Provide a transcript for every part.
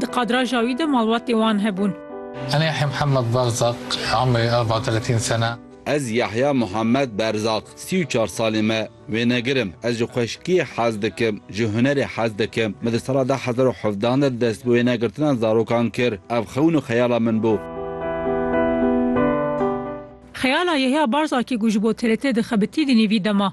Di kadraja wî de malbatê wan hebûn. Ana Yahya Muhammed Berzaq, umrê arba teletîn sene. Ez Yahya Muhammed Berzaq, sî û çar salê me, wênegir im. Ez ji xweşikiyê hez dikim, ji hunerê hez dikim. Min di sala du hezar û hevdeh de dest bi wênegirtina zarokan kir. Ev xewn û xeyala min bû. Xeyala Yahya Berzaqî ku ji bo TRT dixebitî di nêvî dema.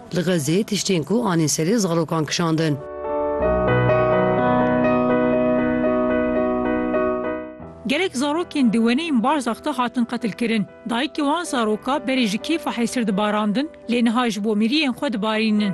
Li Xezê tiştên ku anîn serê zarokan kişandin. Gelek zarokên di weneyên Barzakh de hatin qetilkirin. Dayikê wan zaroka berê ji kêfa hesir dibarandin lê niha ji bo miriyên xwe dibarînin.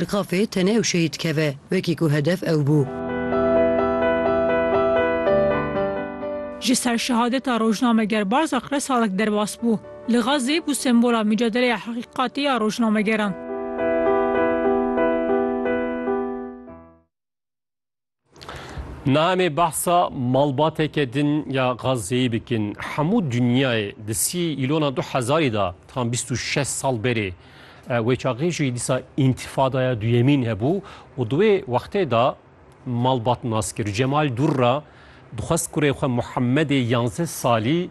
Li qafê tenê ew şehîd dikeve, wekî ku hedef ew bû. Ji ser şehadeta rojnameger Barzak re salek derbas bû. Li Gazê bû sembola micadeleya heqîqatê ya rojnamegeran. Namê bahsa malbateke din ya Gazze'yê bikin. Hemû dinyayê di sî îlona du hezarî da tam bîst û şeş sal berê e, wê çaxê jî dîsa întifadaya duyemîn hebû û di wê wextê da malbat nas kir. Cemal Durra dixwest kurê xwe Muhemmedê yanzdeh salî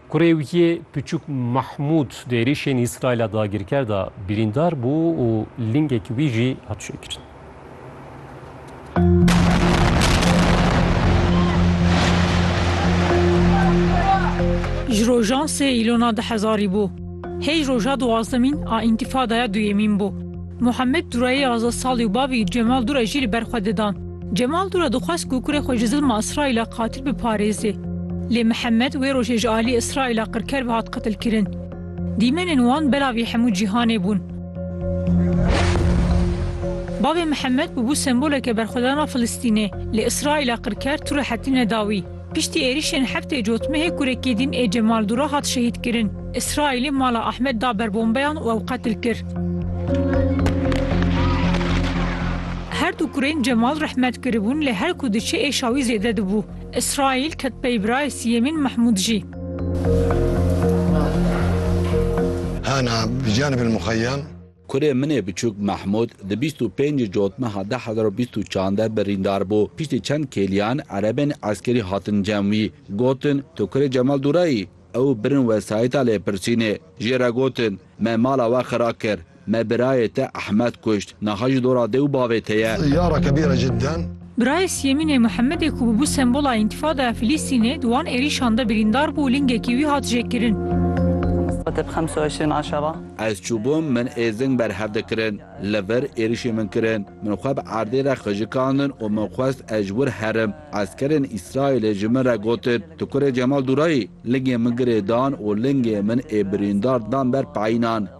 Kurê wî yê piçûk Mahmûd di êrîşên Îsraîla dagirker de birîndar bû û lingekî wî jî hat çêkirin. Ji rojan sê Îlona di hezarî bû. Hêj roja duwazdemîn a Întifadaya Duyemîn bû. Muhammed Durayê aza salî û bavî Cemal Dura jî li ber xwe didan. Cemal Dûra dixwest ku kurê xwe ji zilma Îsraîla qatil biparêzê. Lê Mihemed wê rojê ji aliyê Îsraîla qirker ve hat qitilkirin. Dîmenên wan belavî hemû cîhanê bûn. Bavê Mihemed bûbû semboleke berxwedana Filistînê, lê Îsraîla qirker tu rehetî neda wî. Piştî êrîşên heftê cotmehê kurekî din ê Cemal Dura hat şehîdkirin. Îsraîlê mala Ahmed da ber bombeyan û ew qetil kir. Her du kurên Cemal rehmet kiribûn lê her ku diçe êşa wî zêde dibû. Îsraîl ket pey birayê sîyemîn Mehmûd jî. Hana bi canibîl muxeyyem. Kurê min ê biçûk Mehmûd di bîst û pêncî Cot meha du hezar û bîst û çar de birîndar bû. Piştî çend kêliyan erebên eskerî hatin cem wî. Gotin, Tu kurê Cemal Dûra yî? Ew birin wesayîta lêpirsînê. Jê re gotin, Me mala we xira kir. Me birayê te Ehmed kuşt. Niha jî dora dê û bavê te ye. Yara kebîr e cidden. Birayê Siyemînê Muhemedê ku bûbû sembola Întifadaya Filîstînê di wan êrîşan de birîndar bû û lingekî wî hat jêkirin. Ez çûbûm min êzing berhev dikirin. Li vir êrîşê min kirin. Min xwe bi erdê re xijikandin û min xwest ez ji wir herim. Eskerên Îsraîlê ji min re gotin, Tu kurê Cemal Dûrayî? Lingê min girê dan û lingê min ê birîndar dan ber peynan.